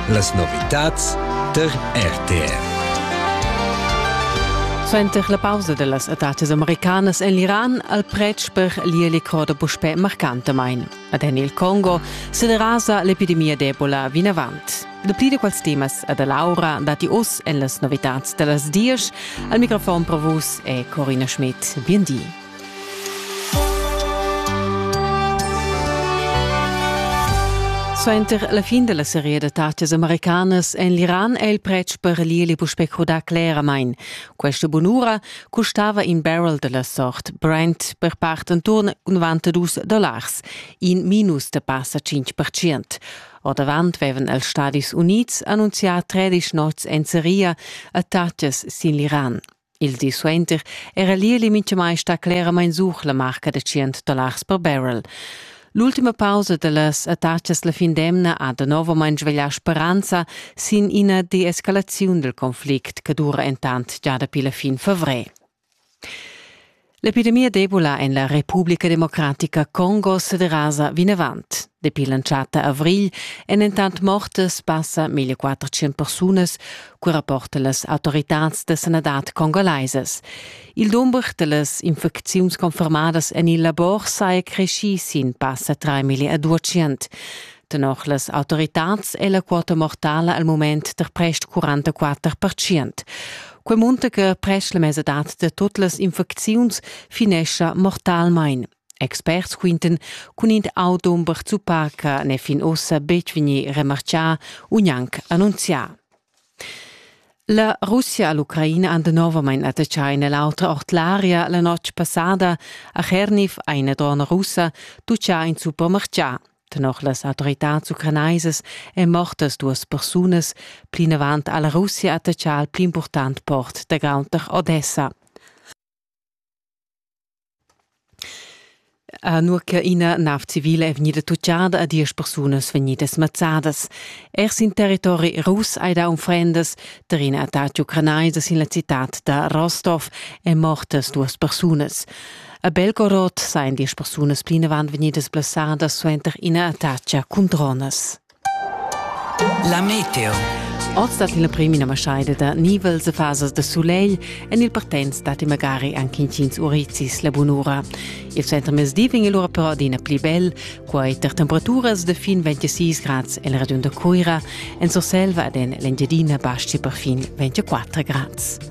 Las novitads tar RTR. Suenter la pausa dellas adatas americanas en l'Iran al pretsch per l'ielicor da puspè marcantamain. Ad en il Congo se derasa l'epidemia d'Ebola vinavant. Dapli da quels temas a da Laura dati oz en las novitads da las dies. Al microfon provus è Corina Schmidt. Bien di. Suenter la fin della seria da tattas americanas en l'Iran è il pretsch per l'ieli puspè crudà cleramain. Questa bunura custava in barrel della sort Brent per part intorn 92 dollars, in minus da passa 5%. Ordavant vevan els Stadis Unids annunzià 13 nots en seria a tattas sin l'Iran. Il di suenter era l'ieli mintgamai stà cleramain sut la marca da tschient dollars per barrel. L'ultima pausa da las attacas la fin d'emna ha danovamain sveglià speranza sin ina deescalaziun dal conflict che dura entant gia dapi la fin favrer. L'epidemia d'Ebola en la Republica Democratica Congo sederasa vinavant. Dapi l'entschatta avrigl èn entant mortas passa 1400 persunas, co rapporta las autoritads da sanadad congolaisas. Il dumber da las infecziuns confermadas en il labor saja creschì sin passa 3 million a 200. Tenor las autoritads è la quota mortala al mument der prest 44 percent. Quei munta che prest la mesadad da tut las infecziuns finescha mortalmein. Experts quinten cun in audomber zuppar che ne fin ossa betg vegni remarcià u gnanc annunzià. La Russia e l'Ucraina han novamain attaccà in l'autra ord l'aria la notg passada a Cherniv eine Drone russa tuccià in supermercià. Tenor las autoritads ucranaisas èn mortas duas persunas, plinavant ha la Russia attatgà il pli impurtant port da Gaunter Odessa. Nur che ina nav civile è vegnida tutgada e diesch persunas vegnidas mazzadas. Er sin territori rus hai dà unfrendas. Tar in attacc ucranais sin la citad da Rostov è mortas duas persunas. A Belgorod sajan diesch persunas plinavant vegnidas blessadas suenter ina attacca cun dronas. La meteo. Oz dat il premi ina maschaida da nivels e fasas da sulegl en il partenz datti magari anche intgins urizis la bunura. Il center mezdi vegn lura però adina pli bel, quai tar temperaturas da fin 26 grads el ragiun da Cuira, en Surselva ed en l'Engiadina basci per fin 24 grads.